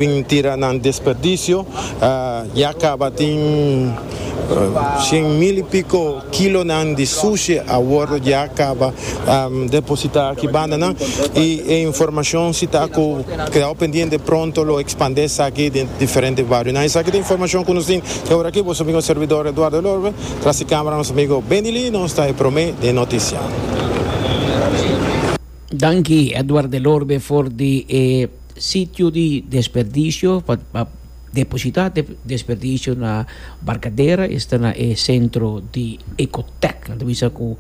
Tin tira nan desperdicio, ya caba tin cien mil y pico kilonan di sushi a wordo ya caba deposita aki bandanan y e informacion si ta cu kedao pendiente pronto lo expande esaki den diferente barionan. Esaki ta informacion cu nos tin e ora aki, boso amigo servidor Eduardo El Orbe, tras di camera nos amigo Bendy Lee nos ta e prome den noticia. Danki Edward del Orbe for di e sitio di desperdicio pa pa deposita e desperdicio na Barcadera esta na e centro di Ecotec nan ta bisa cu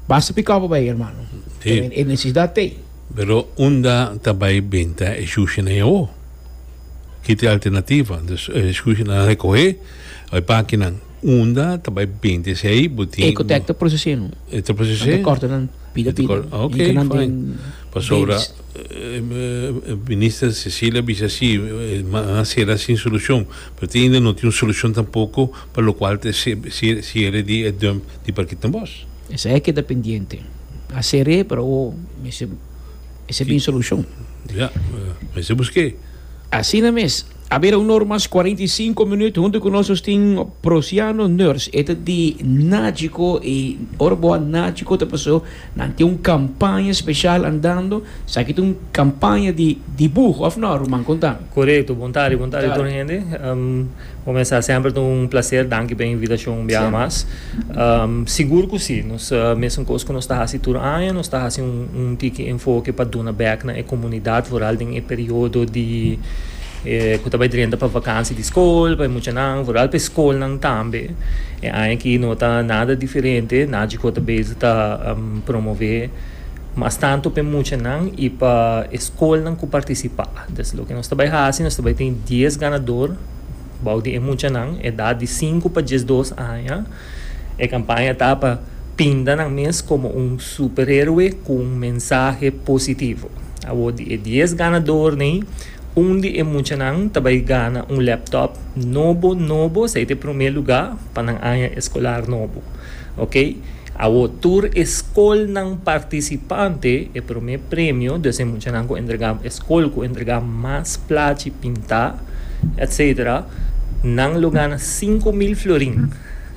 basta pi copo bay hermano Sí. e necesidad ta ey. Pero unda ta bay benta e shushinan e awo? Kit e alternativa? Entonces e shushinan a recohe e pakinan. Unda ta bai bint esei bo tin. Ecotec ta procesé no. E ta procesé? Nan ta corta nan pida pida. Ok fine pasobra minister Cecilia bisa si nan a cera sin solucion pero tin ainda no tin un solucion tampoco pa lo cual ta e cierre di e dump di parkit na bos. Esei a keda pendiente a cer'é pero awo mester esei bin solucion. Ya mester busqué. Asina mes. A bira un or mas cuarenta y cinco minut. Huntu cu nos nos tin Prosiano Nurse. E ta di Najico y ora bo a Najico ta paso nan tin un campaña special andando. Esaki ta un campaña di dibuho, of no ruman? Conta. Corecto. Bon tarde, bon tarde tur hende. Bo mester semper ta un placer. Danki pa e invitacion un biaha mas. Sigur cu si. Nos ta mesencos cu nos ta haci tur aña, nos ta haci un tiki enfoke pa duna bek na e comunidad vooral den e periodo di cu ta bay drenta pa vakantie di school pa e muchanan, vooral pa e schoolnan tambe. E aña aki no ta nada diferente, Nagico ta bezig ta promove mas tanto pa e muchanan y pa e schoolnan cu participa. Nos ta bay haci, nos ta bay tin dies ganador. Bou di e muchanan edat di sinku pa diesdos aña, e kampaña ta pa pinta nan mes komo un superheroe ku un mensahe positivo. Awor di e dies ganadornan ei, un di e muchanan ta bai gana un laptop nobo nobo, sa e ta e promé lugá pa nan aña eskolar nobo. Oke. Awo tur e skolnan partisipante e promé premio, dus e muchanan ku entrega e skol ku entrega mas plachi pintá etc. Nan lo gana sinku mil florin.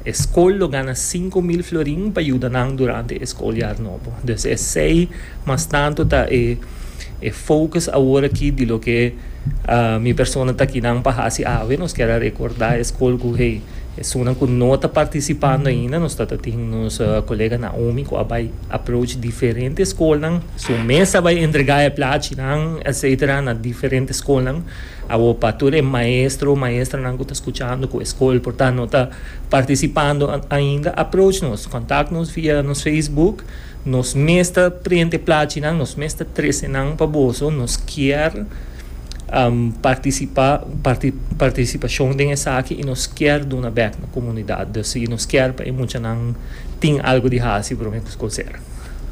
E skol lo gana sinku mil florin pa yuda nan durante e skolyar nobo. Dus esei mas tantu ta e e fokus awor aki di loke mi persona ta aki nan pa hasi awe. Nos kier a rekordá e skol ku hey. Esunnan cu no ta participando ainda nos ta ta tin nos colega Naomi cu a bay approach diferente schoolnan. Su mes a bay entrega e plachinan etc. Na diferente schoolnan awo pa tur e maestro, maestranan cu ta scuchando cu e school por ta no ta participando ainda approach nos, contact nos via nos Facebook. Nos mes ta prende e plachinan, nos mes ta trece nan pa boso, nos kier. participa participacion den esaki y nos kier duna bek na comunidad dus y nos kier pa e muchanan tin algo di haci prome cu school cera.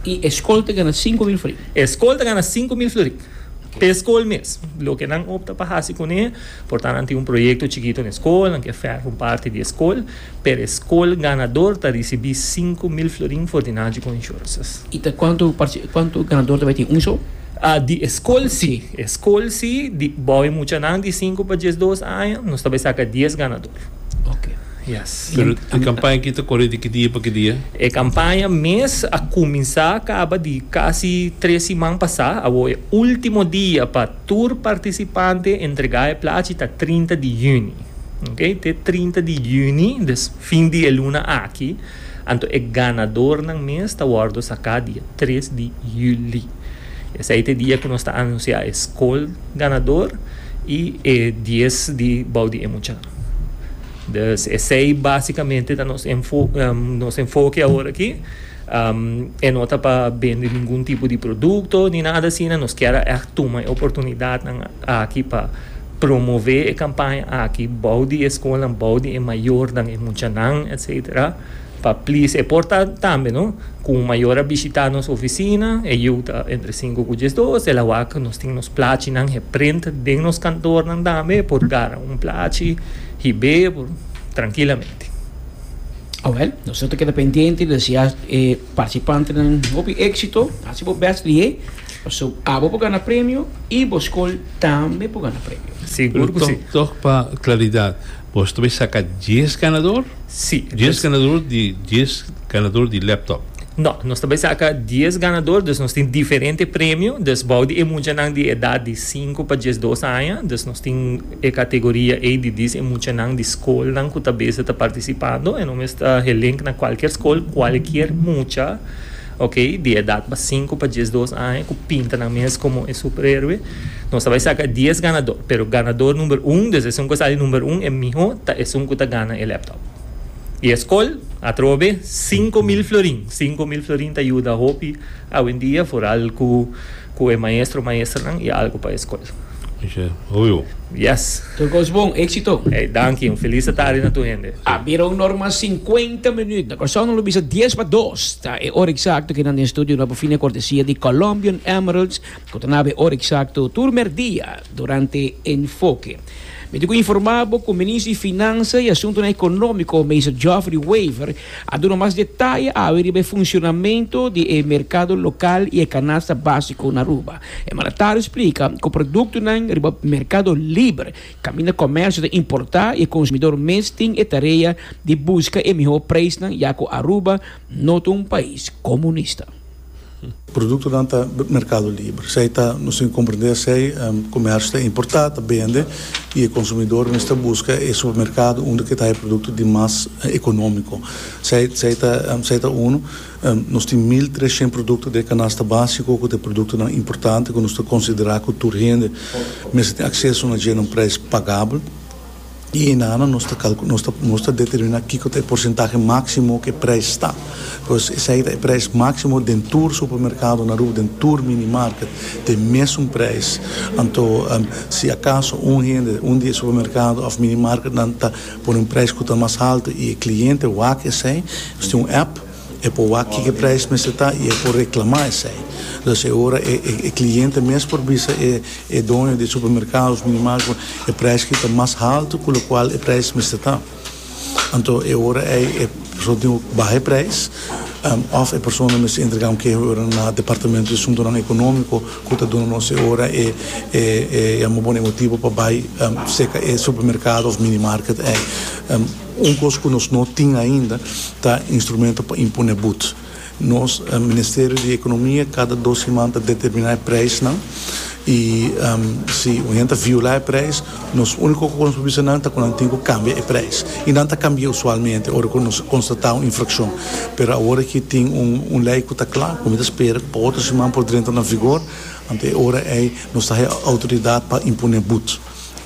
Y e school ta gana sinku mil florin? E school ta gana sinku mil florin p'e school mes. Loke nan opta pa haci cune por ta nan tin un proyecto chikito n'e school nan kier ferra un parti di e school. Per e skol ganador ta risibí sinku mil florin for di Naji ku Insurances. I ta kuantu partici, kuantu ganador ta bai tin un shou? Di e skol si. E skol si, di bou e muchanan di sinku pa dies dos aña, nos ta bai saka dies ganador. Ok. Yes. Pero e kampaña aki ta kore di ki dia pa ki dia? E kampaña mes a kuminsá kaba di kasi tres siman pasá. Awor e último dia pa tur partisipante entregá e plachi ta trinta di yüni. Oke te trinta di yüni des fin di e luna aki anto e ganadornan mes ta wòrdu saká dia tres di yüli esei te dia ku nos ta anunsiá e skol ganador i e dies di bou di e mucha dus esei básikamente ta nos enfo nos enfoke awor aki e no ta pa bende ningun tipo di produkto ni nada asina nos kier a ègt tuma e oportunidatnan aki pa Promové e kampaña aki bou di e skolnan, bou di e mayornan, e muchanan etcétera pa please e por ta tambe no ku un mayor a bishitá nos ofisina e yu ta entre sinku ku diesdos el a wak nos tin nos plachinan heprint den nos kantornan tambe por gara un plachi hib'é por trankilamente. Awèl, nosotros ta keda pendiente desea e partisipantenan hopi éksito, hasi bo bèst lié So abo por gana premio y bo school tambe por gana premio. Sigur cu si. Tok pa claridad, bo ta bay saca dies ganador? Si. Dies ganador di dies ganador di laptop? No, nos ta bay saca dies ganador, dus nos tin diferente premio, dus bao di e muchanan di edad di sinku pa diesdos aña, dus nos tin e categoria ey di dis e muchanan di schoolnan cu ta beza ta participando, e no mester helink na cualkier school, cualkier mucha Ok, di edat pa sinku pa diesdos aña ku pinta nan mes komo e superheroe, nos ta bai saka dies ganadó, pero ganador number un des esun ku a sali number un e mihó ta esun ku ta gana e laptop. I e skol, atrobe, sinku mil florin, sinku mil florin ta yuda hopi awendia, foral ku Cu e maestro, maesternan y algo pa e scol. Oye, oyo. Yes. Tur cos bon, exito. Ey, danki, un feliz ta tarde na tur hende. A bira un norma cincuenta minuut na Curaçao. Nan lo bisa dies pa dos ta e ora exacto cu nan den studio no por fina cortesia di Colombian Emeralds cu ta naba e ora exacto tur merdia durante Enfoke. Mi tin cu informa bo cu Minister di Finansa y Asuntonan Economico, Meester Geoffrey Wever, A duna mas detaye awe riba e funshonamentu di e merkado lokal i e kanasta básiko na Aruba. E mandatario splika ku produktonan riba merkado liber kaminda komèrsio ta importá i e konsumidor mes tin e tarea di buska e mihó preisnan ya ku Aruba no ta un pais komunista. Produktonan ta merkado liber. Esei ta, nos tin ku komprendé esei, komersio ta importá, ta bende i e konsumidor mester buska e supermerkado unda ke ta hai produkto di mas ekonómiko. Esei, esei ta, esei ta unu. Nos tin mil tres shent produkto den e kanasta básiko ku ta e produktonan importante ku nos ta konsiderá ku tur hende mester tin akseso na dje na un preis pagabel. I hinana nos ta calcu, nos ta, nos ta determina kico ta e porcentahe maximo cu e prijs ta. Pues esai ta e prijs maximo den tur supermercado na Aruba, den tur minimarket, ta e mesun prijs. Anto, si acaso un hende, un di e supermercado of minimarketnan ta pone un prijs cu ta mas halto y e cliente wak esai, nos tin un app, E por wak kiko e prijs mester ta y e por reclama esey. Entonces e ora e cliente mes por bisa e doño di e supermercados minimal cu e prijs ki ta mas halto cu locual e prijs mester ta. Anto e ora ey e persona tin cu baha e prijs of e persona mester entrega un keho e ora na departamento di suntonan economico cu ta duna nos e ora e yama bo na e motibo pa bay seca e supermercado of minimarket ey. Un kos ku nos no tin ainda ta instrumento pa impone bud. Nos Ministerio di Ekonomia kada dos siman ta determiná e preisnan i si un hende ta violá e preis nos úniko ku nos por bisa nan ta ku nan tin ku kambia e preis. I nan ta kambia usualmente ora ku nos konstatá un infrakshon. Pero awor ki tin un lei ku ta kla ku mi ta spera pa otro siman por drenta na vigor, anto e ora ei nos ta haya outoridat pa impone bud.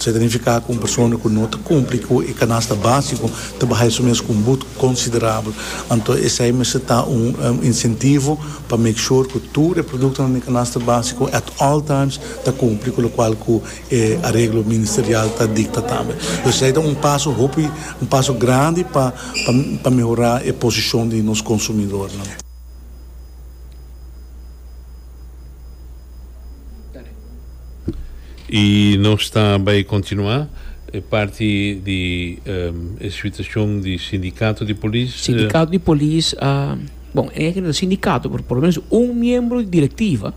Esei ta nifiká ku un persona ku no ta kumpli ku e kanasta básiko ta bahai su mes ku un but konsiderabel. Anto esei mester ta un insentivo pa make sure ku tur e produktonan den e kanasta básiko at all times ta kumpli ku lokual ku e areglo ministerial ta dikta tambe. Entonces esei ta un paso hopi un paso grandi pa pa mehorá e posishon di nos konsumidornan. I nos ta bai kontinuá e parti di e situashon di sindikato di polis. Sindikato di polis, bon, e no ta sindikato pero por lo menos un miembro di direktiva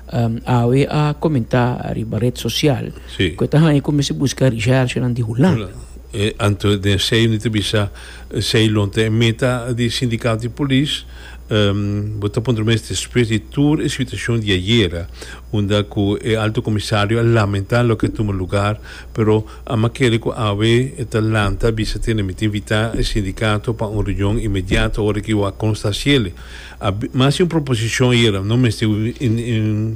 awe a komentá riba ret sosial ku e ta haña ku mester buska rishershionan di Hulanda. Anto den esei mi ta bisa esei lo ta e meta di sindikato di polis. Bo ta puntra mes despues di tur e situacion di ayera unda cu e Alto Comisario a lamenta loke a tuma lugar pero a'ma kere cu awe e ta lanta bisa tene mi ta invita e sindicato pa un reunion inmediato ora cu a consta ciele a mas di un proposicion ayera no mester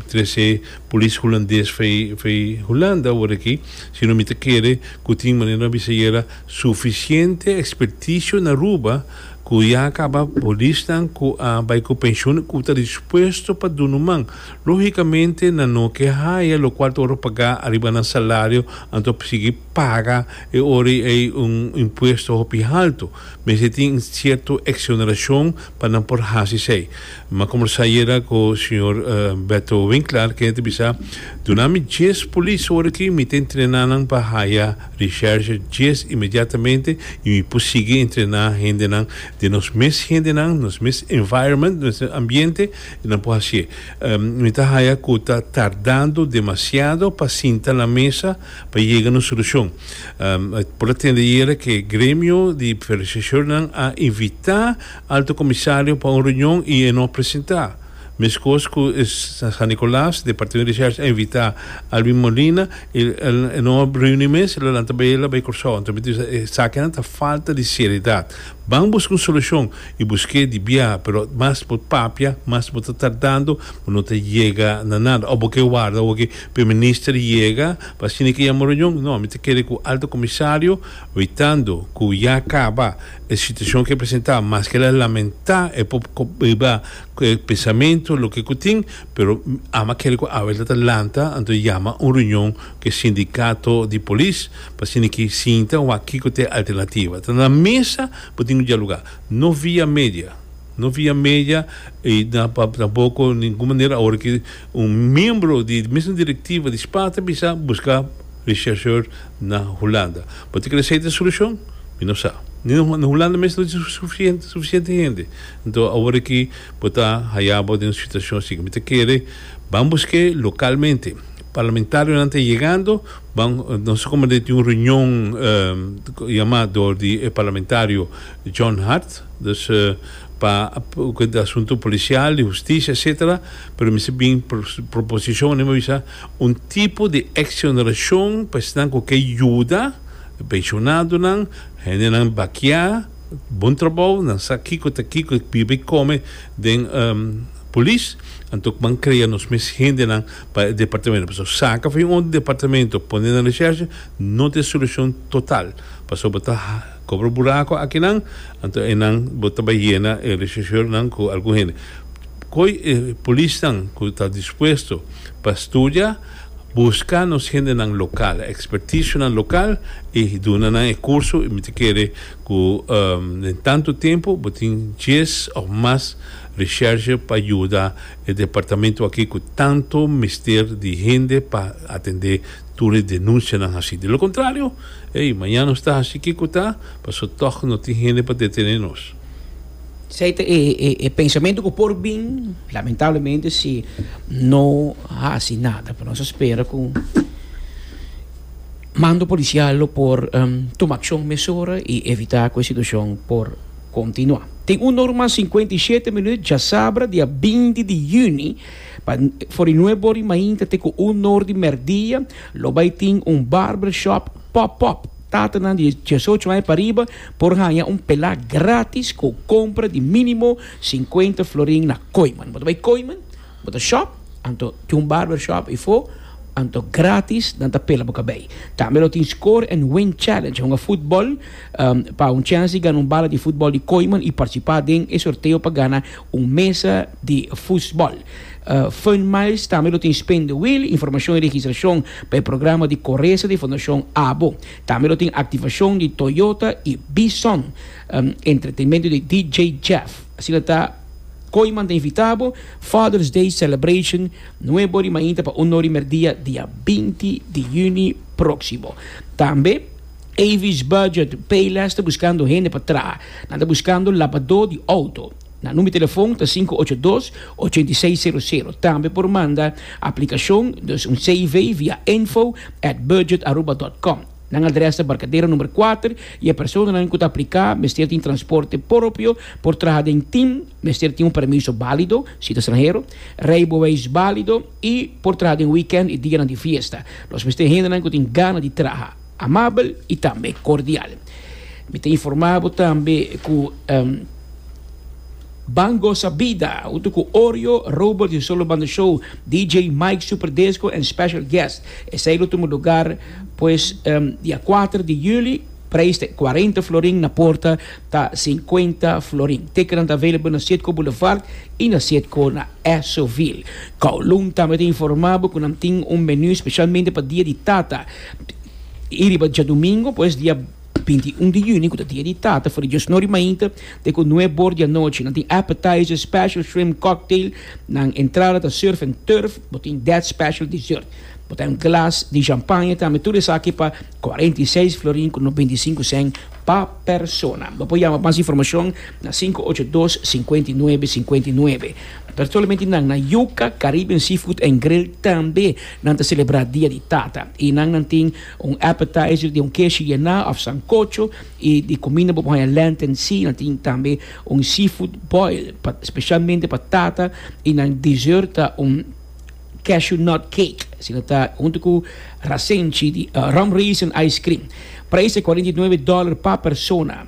trece Polis Hulandes fey Hulanda ora aki sino mi ta kere cu tin manera a bisa ayera suficiente experticio na Aruba. ku ya a kaba, polisnan ku a bai ku penshon ku ta dispuesto pa dunu man, lógikamente nan no ke haya lokual ta ora pagá ariba nan salario, anto pa sigui paga e ora ei un impuesto hopi haltu. Mester tin un sierto eksonerashon pa nan por hasi esei. M'a combersa ayera cu señor Beto Winklar cu e ta bisa, Duna mi dies polis ora aki, mi ta entrena nan pa haya recherche dies inmediatamente y mi por sigui entrena hendenan den nos mes hendenan, nos mes environment, nos mes ambiente y nan por haci'e. Mi ta haya cu ta tardando demasiado pa sinta na mesa pa yega na un solucion. Por a tende ayera cu e gremio di rechercheurnan a invita Alto Comisario pa un reunion y e no presenta. Mescos cu e San Nicolas, de Partido Recherche a invita Alvin Molina y e no reuni mes, lo lanta bay la bay Curaçao. Anto mi ta bisa esakinan ta falta di seriedad. Ban busca un solucion y busque di bia, pero mas bo papia, mas bo ta tardando, bo no ta yega na nada. Of bo ke warda hogi Prime Minister yega pa asina ke yama un reunion? No, mi ta kere cu Alto Comisario, wetando cu ya caba. E situacion cu e presenta, maske el a lamenta, e por biba cu e pensamento loke cu tin, pero ama kere cu Abel ta ta lanta, anto e yama un reunion cu e sindicato di polis pa asina aki sinta wak kico ta e alternativa. Ta na mesa bo tin cu dialuga, no via media, no via media y tampoco ningun manera awor aki un miembro di mesmo directiva di Spa ta bisa busca rechercheur na Hulanda. Bo ta kere esey ta e solucion? Mi no sa. Ni na Hulanda mes no tin suficiente hende. Enton awor aki bo ta haya bo den un situacion asi. Mi ta kere ban busque localmente. Parlamentarionan ta yegando, ban nos ta comand'e tin un reunion yama door di e parlamentario John Hart, dus pa e asunto policial, di husticia etcetera, pero mi si bin proposicionnan mi bisa un tipo di exoneracion pa esnan cu ke yuda. Pensionadonan, hendenan bakiá, bon trabou, nan sa kiko ta kiko e biba i kome den Polis, anto kman krea nos mes hendenan pa e departamento, pasobra saka fin otro departamento pone na reshershe no ta e solushon total, pasobra bo ta kobra buraku akinan, anto einan bo ta bai yena e reshershornan ku algun hende. Koy e Polisnan ku ta dispuesto pa studia. Busca nos hendenan local, expertisonan local y duna nan e curso y mi ta kere cu den tanto tempo bo tin dies of mas recherche pa yuda e departamento aki cu tanto mester di hende pa atende tur e denuncianan haci. Di lo contrario, ey, mañana nos ta haci kico ta, pasobra toch no tin hende pa detene nos. Esei ta e pensamentu ku por bin, lamentablemente, si no hasi nada. Pero nos a spera ku mando polisial lo por tuma akshon mesora i evitá ku e situashon por kontinuá. Tin un nor mas sinkuenta i shete minüt djasabra, dia binti di yüni, pa for di nuebe bor di mainta te ku un nor di mèrdia, lo bai tin un barbershop pòp-pòp. Tatanan di diesocho aña pariba por haña un pelá grátis ku kompra di mínimo sinkuenta florin na Koiman. Bo ta bai Koiman, bo ta shòp, anto tin un barbershop ifo, anto grátis nan ta pela bo kabei. Tambe lo tin Score and Win Challenge, hunga futbòl pa un chèns di gana un bala di futbòl di Koiman i partisipá den e sorteo pa gana Un mesa di fusbòl. Fern Myers tambe lo tin spin the wheel, informashon i registrashon pa e programa di koresa di Fondashon Abo. Tambe lo tin aktivashon di Toyota i Bison, entretenmentu di DJ Jeff. Asina ta Koiman ta invitá bo Father's Day Celebration nuevo di mainta pa un nor di merdia dia binti di yüni próksimo. Tambe. Avis Budget, Payless ta buskando hende pa traha. Nan ta buskando labadó di outo. Nan number telefon ta sinku ocho dos, ochenta i seis sero sero. Tambe por manda aplikashon, dus un CV, via info at budgetaruba dot com. Nan adrès ta Barcadero number kuater i e personanan ku ta apliká mester tin transporte poropio, por traha den tim, mester tin un permiso bálido, si ta stranhero, reiboweis bálido i por traha den weekènt i dianan di fiesta. Nos mester hendenan ku tin gana di traha. Amabel y tambe cordial. Mi ta informa bo tambe cu Ban Goza Bida hunto cu Orjo, Robert y Solo Banda Show, DJ Mike Super Disco and Special Guest. Esey lo tuma lugar pues dia cuater di juli. Prijs ta e cuarenta florin, na porta ta cincuenta florin. Ticketnan ta available na Citgo Boulevard y na Citgo na Esoville. Kowloon tambe ta informa bo cu nan tin un menu specialmente pa dia di tata. I riba djadumingu pues, dia binti i un di yüni, ku ta Dia di Tata, for di Dios Nori mainta, te ku nue bor di anochi. Nan tin appetizer, special shrimp cocktail, nan entrada ta surf and turf, bo tin dèt special dessert. Bo ta un glas di shampanje tambe. Tur esaki pa cuarenta i seis florin ku noventa i sinku sèn pa persona. Bo por yama pa mas informashon na sinku ocho dos, sinkuenta i nuebe, sinkuenta i nuebe. Solamente nan na Yuca Caribbean Seafood and Grill tambe. Nan ta selebrá dia di tata i nan nan tin un appetizer di un keshi yená òf sankocho i di kuminda bo por haña lenten si nan tin tambe un seafood boil pa spesialmente pa tata i nan dessert ta un cashew nut cake si nan ta huntu ku rasenchi di rum raisin ice cream. Prijs ta kuarenta i nuebe dòler pa persona.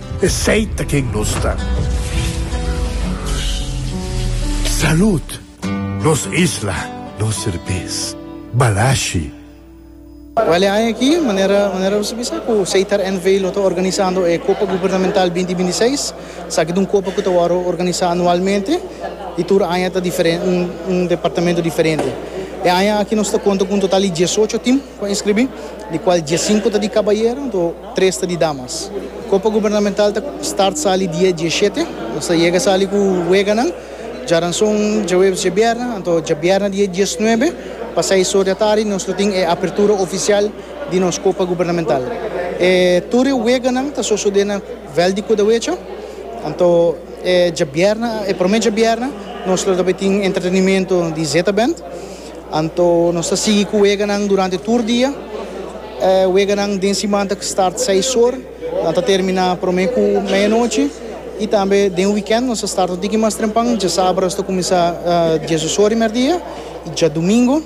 Esey ta ken nos ta. Salud! Nos isla, nos serbes. Balashi. Wele aña aki, manera manera bo ta bisa ku Seitar NV lo ta organisando e Kopa Gubernamental binti binti seis. Esaki ta un kopa ku ta wòrdu organisá anualmente i tur aña ta diferente, un un departamento diferente. E aña aki nos ta konta ku un total di diesocho tim ku a inskribí, di kual diesinku ta di kabayera. Tres ta di damas. Copa Gubernamental ta start sali dia dieshete. Nos ta yega sali cu weganan. Djaranzon djahuebes djabierna. Anto djabierna dia diesnuebe pa seis or di atardi nos lo tin e apertura oficial di nos Copa Gubernamental. E tur e weganan ta sosode na Veld di Cudahuecha. Anto e djabierna, e prome djabierna, nos lo ta bay tin entretenimento di Z-Band. Anto nos ta sigui cu weganan durante tur dia. E weganan den siman ta start seis or a ta termina prome cu media nochi y tambe den weekend nos ta start un tiki mas trempan, dja sabra nos ta cuminsa dies dos or di merdia y dja domingo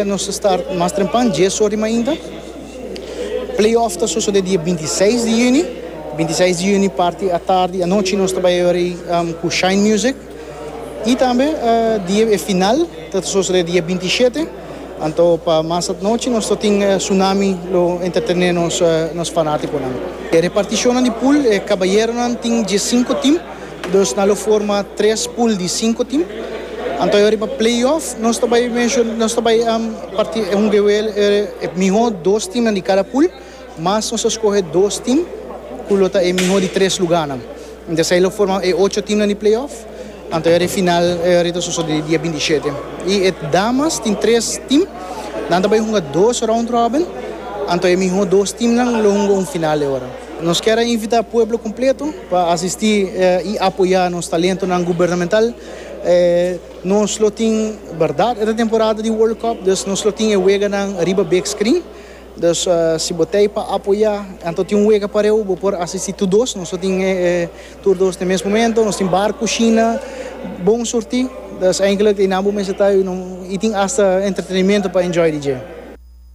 nos ta start mas trempan dies or di mainta. Play off ta sosode dia binti i seis di juni, binti i seis di juni parti atardi anochi nos ta bay yori cu shine music. Y tambe di e final ta sosode di e binti shete, anto pa mas at nochi nos ta tin Tsunami lo entretené nos fanaticonan. E reparticionnan di pool, e cabayeronan tin dje cinco team, dos nan lo forma tres pool di cinco team. Anto e riba playoff nos ta bay nos ta bay hunga e miho dos teamnan di cada pool. Mas nos a skohe dos tim ku lo ta e mihó di tres lugánan. Entés ei lo forma e ocho timnan di playoff. Anto e final ei ta sosodé dia binti shete. I e damas tin tres tim, nan ta bai hunga dos round robin. Anto e mihó dos timnan lo hunga un final ei ora. Nos kier a invitá pueblo kompleto pa asistí i apoyá nos talentonan gubernamental. Nos lo tin, bèrdat, e ta temporada di World Cup, dus nos lo tin e weganan riba big screen. Dus si bo ta ei pa apoyá, anto tin un wega par'é hu bo por asistí tur dos. Nos no tin tur dos den mes momento, nos tin bar ku shina bon surtí. Dus enkele ei nan bo mester ta ei, i tin asta entretenimento pa enjoy di dje.